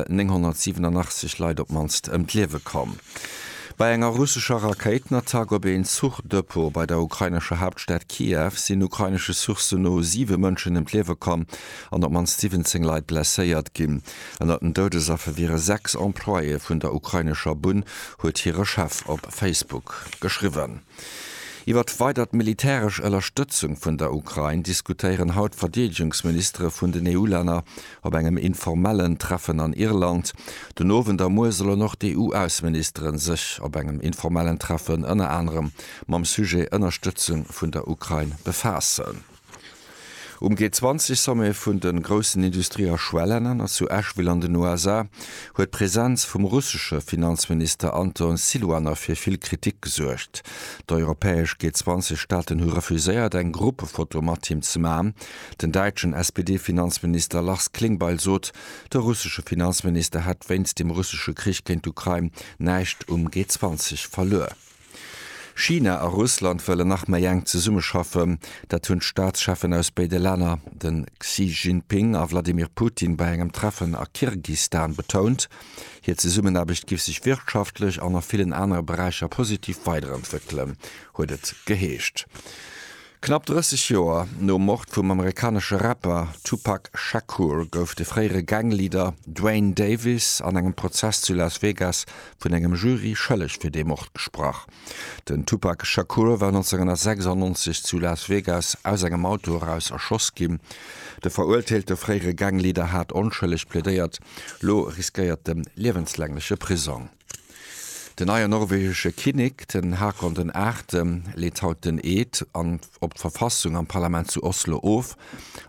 987 Leit op d'mannst ëm d'Liewe komm. Bei enger russescher Rakéitenattack op een Zuchdepot bei der ukrainescher Haaptstad Kiew sinn ukrainesche Sourcen no siwe Mënschen ëm d'Liewe komm an op d'mannst 17 Leit blesséiert ginn. Ënnert den Doudesaffer wiere sechs Employéë vun der ukrainescher Bunn, huet hire Chef op Facebook geschriwwen. Iwwer d'weidert militäresch Ënnerstëtzung vun der Ukrain diskutéieren haut d'Verdeedegungsministere vun den EU-Länner op engem informellen Treffen an Irland. Den Owend a muer sollen och d'EU-Ausseministeren sech op engem informellen Treffen ënner anerem mam Sujet Ënnerstëtzung vun der Ukrain befaassen. Um G20-Sommet vun de groussen Industrie a Schwellelänner zu Asheville an den USA huet d'Presenz vum russesche Finanzminister Anton Siluanov fir vill Kritik gesuergt. D'europäesch G20-Staaten hu refuséiert, eng Gruppefoto mat him ze maachen. Den däitschen SPD-Finanzminister Lars Klingbeil sot, de russesche Finanzminister hätt wéinst dem russesche Krich géint d'Ukrain näischt um G20 verluer. China a Russland wëllen nach méi enk zesummeschaffen. Dat hunn d'Staatscheffen aus béide Länner, de Xi Jinping a Wladimir Putin, bei engem Treffen a Kirgistan betount. Hir Zesummenaarbecht giff sech wirtschaftlech an a villen anere Beräicher positiv weiderentwéckelen, huet et geheescht. Knapp 30 Joer nom Mord vum amerikanesche Rapper Tupac Shakur gouf de fréiere Gang-Leader Duane Davis an engem Prozess zu Las Vegas vun engem Jury schëlleg fir dee Mord gesprach. Den Tupac Shakur war 1996 zu Las Vegas aus engem Auto eraus erschoss ginn. De verurteelte fréiere Gang-Leader hat onschëlleg plädéiert. Lo riskéiert en liewenslängleche Prisong. Den neie norwegesche Kinnek, den Haakon den Aachte, leet haut den Eed an op d'Verfassung am Parlament zu Oslo of.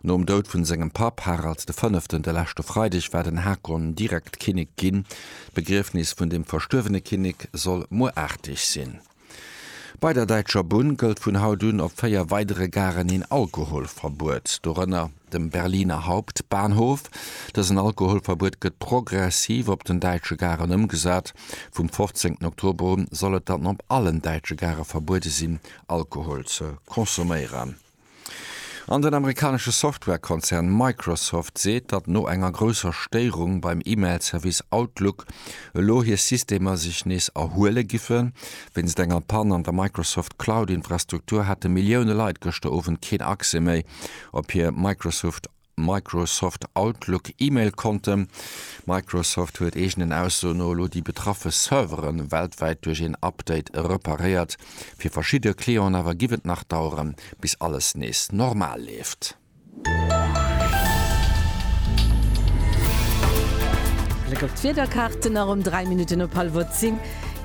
Nom Doud vun sengem Papp, Harald de Fënneften, de leschte Freideg war den Haakon direkt Kinnek ginn. D'Begriefnis vun dem verstuerwene Kinnek soll muer aarteg sinn. Bei der Däitscher Bunn gëllt vun haut un op 4 weidere Garen een Alkoholverbuet, dorënner dem Berliner Hauptbahnhof. Dësen Alkoholverbuet gëtt progressiv op den däitsche Garen ëmgesat. Vum 15 Oktober u soll et dann op allen däitsche Gare verbuede sinn, Alkohol ze consomméieren. An den amerikanesche Software-Konzern Microsoft seet, datt no enger grousser Stéierung beim E-Mail-Service Outlook elo hir Systemer sech nees erhuele giffen. Wéinst enger Pann an der Microsoft Cloud-Infrastruktur hate Millioune Leit gëschter Owend keen Accès méi op hir Microsoft Microsoft Outlook E-Mail-Konte. Microsoft huet eegenen Aussoen no elo déi betraffe Servere weltwäit duerch een Update reparéiert. Fir verschidde Clienten awer giff et nach daueren, bis alles nees normal leeft. Bléck op d'Wiederkaarten nach um 3 Minutten op hallwer 10.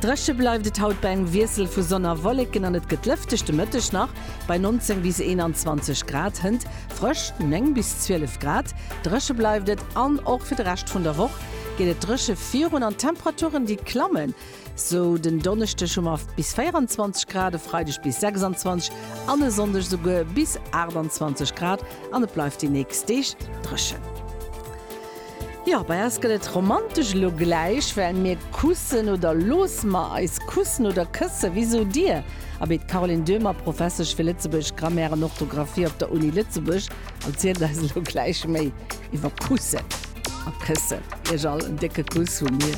Dréche bleift et haut bei engem Wiessel vu Sonn a Wolleken an et gëtt lëfteg de Mëtteg nach bei 19 bis 21 Grad. Hënt Frësch, 9 bis 12 Grad, dréche bleift et an och fir de Rescht vun der Woch geet et dréche virun an d'Temperaturen, déi klammen. Esou den Donneschdeg hu mer bis 24 Grad, e Freideg bis 26 an e Sonndeg esouguer bis 28 Grad an et bleift déi nächst Deeg dréchen. Jo, bei eis gëtt et romantesch elo gläich, well mir kussen oder loosse mer eis kussen oder kësse, wéi sot Dir? Abee, d'Caroline Döhmer, Professesch fir Lëtzebuergesch Grammaire an Orthografie op der Uni Lëtzebuerg, erzielt eis elo gläich méi iwwer kussen a këssen. Iech all en décke Kuss vu mir.